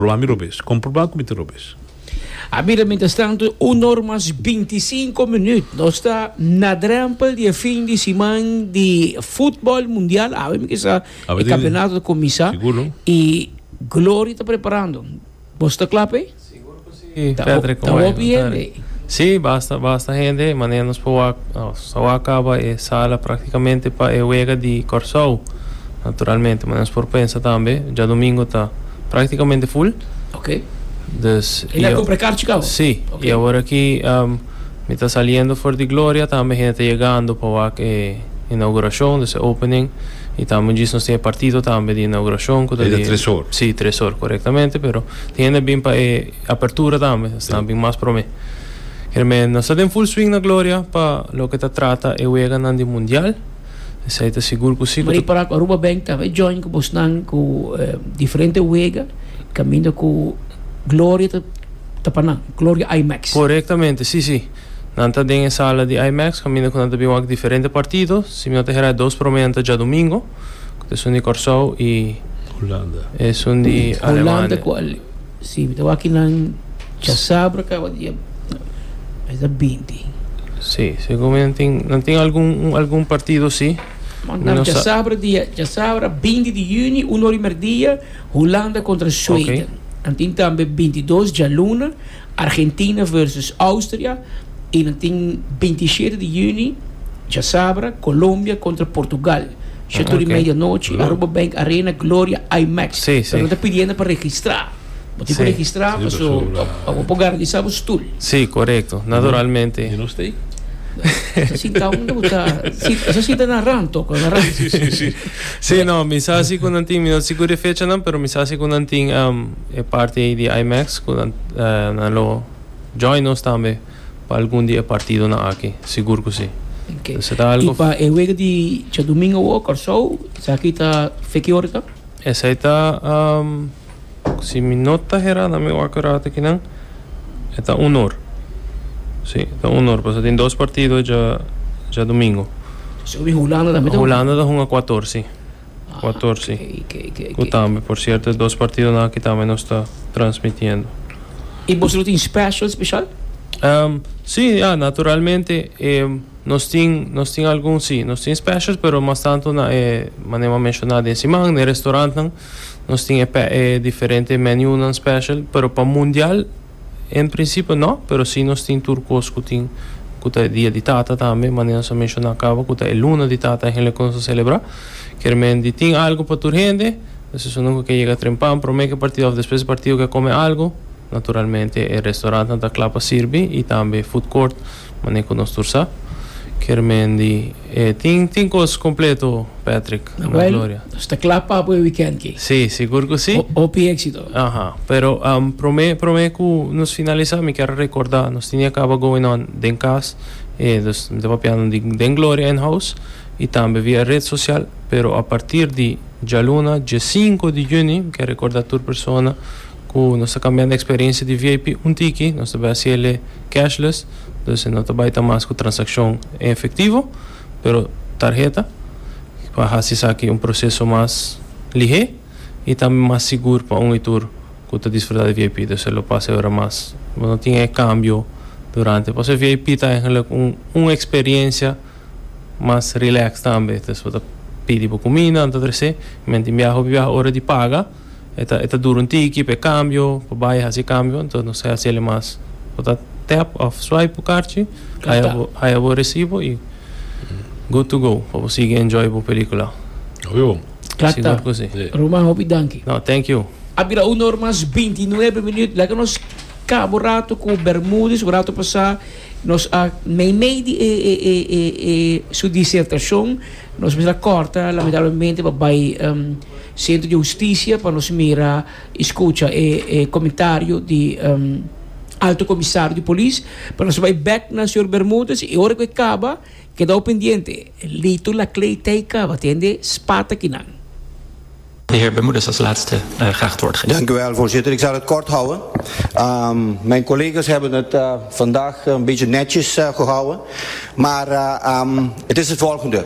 Lo a mi robes. Comproba cu mi ta robes. A mira mientras tanto un or mas binti sinku minut. Nos ta na drempel di e fin di siman di futbol mundial. Awe mikesa e campeonato ta cuminsa y gloria ta preparando. Bo sta cla p'e? Ta hopi hende. Si, basta basta hende di manera nos por wak, nos a wak caba e sala practicamente pa e wega di Corsou. Naturalmente, manera nos por pensa tambe, djadomingo ta. Practicamente full. Ok. Dus. E na compra e car chica awo? Si. Ok. Y awor aki mi ta saliendo for di Gloria, tambe hende ta yegando pa wak e inauguracion, dus e opening. Y tambe un djis nos tin e partido tambe di inauguracion cu ta di. E ta tres or. Si, tres or, correctamente. Pero tin hende a bin pa e apertura tambe, esnan a bin mas prome. Kermee, nos ta den full swing na Gloria pa loke ta trata e weganan di Mundial. Esei ta sigur ku si bo ta. Ripará ku Aruba Bank ta haña join ku bosnan ku diferente wega kaminda ku gloria ta ta pa nan, Gloria IMAX. Korektamente, si, si. Nan ta den e sala di IMAX kaminda ku nan ta bin wak diferente partido. Si mi no ta hera e dos promé nan ta djadumingu, ku ta esun di Kòrsou i. Hulanda. Esun di Alemania. Hulanda ku. Si, mi ta wak ki nan chasá por a kaba di e mes di binti. Si, segun mi nan tin, nan tin algun, un algun partido si. Mi no sa. Chasabra dia, chasabra binti di juni, un ora di merdia, Hulanda kontra Sweden. Nan tin tambe binti dos djaluna, Argentina versus Austria, i nan tin binti shete di juni, chasabra, Kolombia kontra Portugal. Shotu di medianochi, Aruba Bank Arena, Gloria IMAX. Sí, sí. Pero no ta pidiendo pa registra. Bo tin Sí. ku registra, Sí, paso paso la- pa bo por garantisa bo stul. Sí, correcto. Naturalmente. Yo no stay. Esa sintao no ta bota, si- esa sinta na ran tok, na ran. Sí, sí, sí. Sí, no, mi sa si ku nan tin, mi no ta sigur di e fechanan, pero mi sa si ku nan tin am, e parti ei di IMAX, ku nan, eh, nan lo join nos tambe. Pa algun di e partidonan aki? Sigur ku si. I pa e wega di djadumingu awor Kòrsou, esaki ta fe ki ora ta? Esei ta, si mi no ta herá na mi wak rato aki nan, e ta un or. Si, e ta un or pasobra tin dos partido djadumingu. Pasobra Hulanda tambe ta hunga. Hulanda ta hunga kuator, si. Kuatorsi, ku tambe por sierto e dos partidonan aki tambe nos ta transmitiendo. I boso lo tin special special? Si, ya, naturalmente nos tin, nos tin algun si, nos tin specials pero mas tanto na e manera menshoná den siman na e restaurantnan nos tin e diferente menunan special pero pa mundial. En principio no, pero si nos tin tur cos cu tin cu ta e dia di tata tambe, manera nos a menciona caba cu ta e luna di tata eigenlijk cu nos ta celebra, kermendi tin algo pa tur hende, nos esun nunca ke yega trempan, prome ke partido of despues di partido ke come algo, naturalmente e restaurantnan ta cla pa sirbi y tambe food court. Mane ku nos tur sa kier Mandy e tin tin kos kompleto Patrick na Well Gloria. nos ta kla pa apo e wikènt ki. Si, sigur ku si. Hopi éksito. Aha, pero promé promé ku nos finalisá mi kier rekordá nos tenia kaba going on den kas, e dus mi ta papiando di den Gloria en house i tambe via e ret sosial, pero a partir di djaluna die sinku di juni mi kier rekordá tur persona ku nos ta kambiando eksperensia di vip un tiki, nos ta bai hasiel e. cashless, dus e no ta bai ta mas ku transakshon en efektivo, pero tarheta pa hasi esaki un proseso mas lihé i tambe mas sigur pa un i tur ku ta disfrutá di vip. Dus e lo pasa e ora mas bo no tin e kambio durante pasobra vip ta eigenlik un un eksperensia mas relax tambe. Dus bo ta pidi bo kuminda anto trese, miént tin biaha hopi biaha ora di paga. E ta e ta dura un tiki pa e kambio pa bai e hasi e kambio enton nos a hasiel e mas bo ta tap of swipe bo karchi haya bo haya bo resibo y good to go pa bo sigui enjoy bo pelikula Hopi bon. Klaar ta. Sigur ku si. Si. Roman hopi danki. No, thank you. A bira una or mas binti nuebe minüt. Laga nos kaba un ratu ku Bermudez. Un ratu pasá nos a meimei di e e e e e su disertashon. Nos mester a kòrta lamentablemente pa bai Centro di Husticia pa nos mira y scucha e comentario di Alto Comisario di Polis pa nos bay back na Señor Bermudez y ora cu e caba kedao pendiente Lito Laclay ta y caba ta hende spat aki nan. De heer Bermudez als laatste graag het woord geven. Dank u wel, voorzitter. Ik zal het kort houden. Mijn collega's hebben het vandaag een beetje netjes gehouden. Maar het is het volgende.